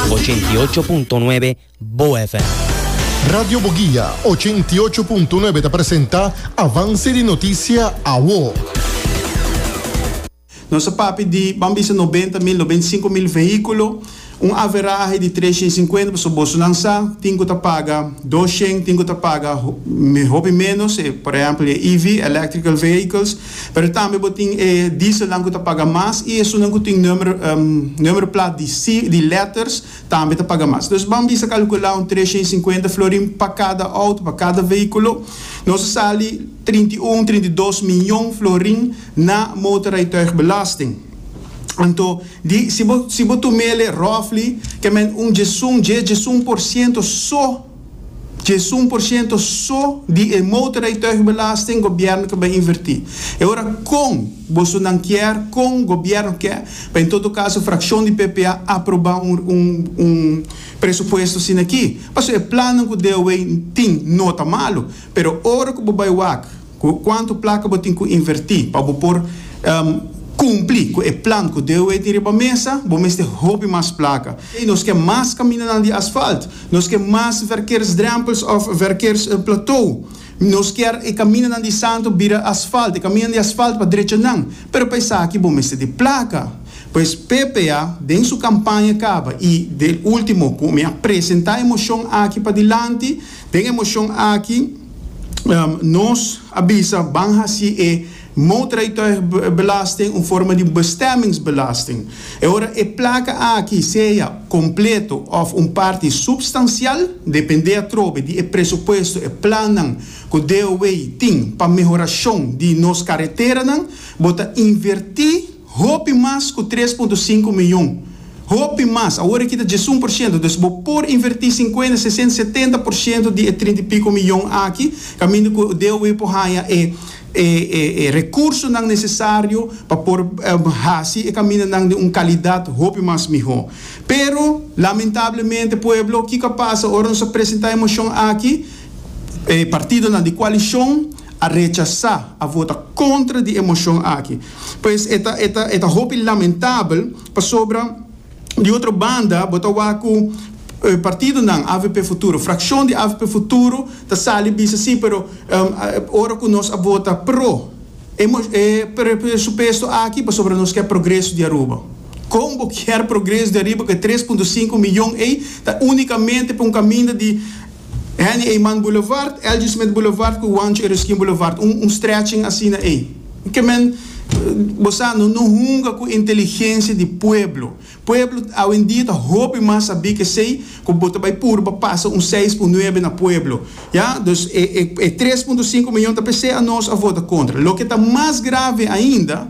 Ochenta i ocho punto nuebe Bo FM. Radio Boguia ochenta i ocho punto nuebe ta presenta Avance di Noticia Awo. Nos a papia di, ban bisa noventa mil, noventa i sinku mil vehiculo, un averahe di tres shen cincuenta, pasobra bosonan sa, tin cu ta paga dos shen, tin cu ta paga hopi menos, por ehempel e EV, Electrical Vehicles, Pero tambe bo tin e dieselnan ku ta paga mas i esunnan ku tin numero numero plat di si di letters tambe ta paga mas. Entonces ban bisa kalkulá un tresha i sinkuenta florin pa kada outo, pa kada vehíkulo. Nos a sali trinta i un, trinta i dos mion florin na motorrijtuigbelasting. Anto di si bo si bo tum'ele roughly ke men un djesun, dje djesun por siento so. Djesun por ciento so di e motorrijtuigbelasting gobierno ke bai inverti. E ora kon bosonan kier, kon gobierno ke, pa en todo caso fraccion di ppa aproba un presupuesto asina aki. Pasobra e plannan ku DOW tin no ta malu, pero ora ku bo bai wak, Cu cuanto placa bo tin cu inverti pa bo por cumpli cu e plan cu DOE tin riba mesa? Bo mester hopi mas placa. Ey, nos ke mas caminanan di asfalt. Nos ke mas verkeersdrempels of verkeersplateau. Nos kier e caminanan di Santo bira asfalt, e caminanan di asfalt pa drechanan. Pero pa esaki bo mester di placa. Pues ppa den su campaña caba y den ultimo cu mi a presenta e mocion aki padilanti, den e mocion aki, Nos a bisa ban hasi e motorrijtuigbelasting un forma di bestemmingsbelasting. E ora e plaka aki sea kompleto òf un parti supstansial, dependé atrobe di e presupuesto, e plannan ku DOW tin pa mehorashon di nos kareteranan, bo ta invertí, Hopi mas ku tres punto sinku mion. Hopi mas. Awor e kita djes un por shento. Dus bo por invertí sinkuenta, sesenta, setenta por shento di e trinta i piko mion aki kaminda ku DOW por haña e e rekursonan nesesario pa por hasi e kamindanan den un kalidat hopi mas mihó. Pero, lamentablemente, pueblo, kiko a pasa ora nos a presentá e moshon aki? E partidonan di kualishon. a rechasá, a vota kontra di e moshon aki. Pues e ta, e ta, e ta hopi lamentabel pasobra di otro banda bo ta wak ku partidonan avp Futuro, frakshon di avp Futuro ta sali bisa sí pero ora ku nos a vota pro e e presupuesto aki pasobra nos ke progreso di Aruba. Kon bo kier progreso di Aruba ku e tres punto sinku miyon ei ta únikamente pa un kaminda di Henny Eyman Boulevard, Elgie Smith Boulevard cu Juancho Ereskine Boulevard, un un stretching asina ey. Ke men bo sa no no hunga cu inteligencia di pueblo. Pueblo awendia ta hopi mas sabi kesey cu bo ta bay purba pasa un seis cu nuebe na pueblo. Ya, dus e e e tres punto cinco miyon ta p'esey anos a vota contra. Loke ta mas grave ainda.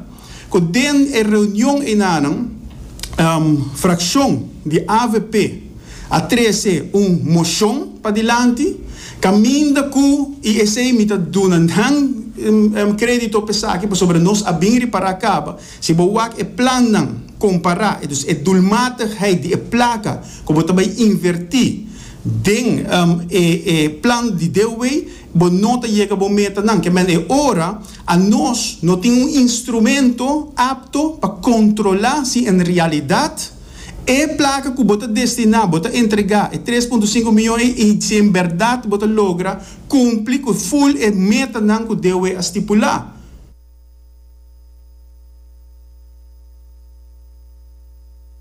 ku den e reunion einanan frakshon di avp a trese un moshon padilanti kaminda ku i esei mi ta duna nan kredito pa esaki pasobra nos a bin ripará kaba si bo wak e plannan kompará entonces e dulmatigheid di e plaka ku bo ta bai invertí den e plan di DW bo no ta yega bo metanan kemen e ora A Nos no tin un instrumento apto pa controla si en realidad e placa cu bo ta destina, bo ta entrega, e tres punto sinku miyon ei y si en berdad bo ta logra cumpli cu full e metanan cu DOE a stipula.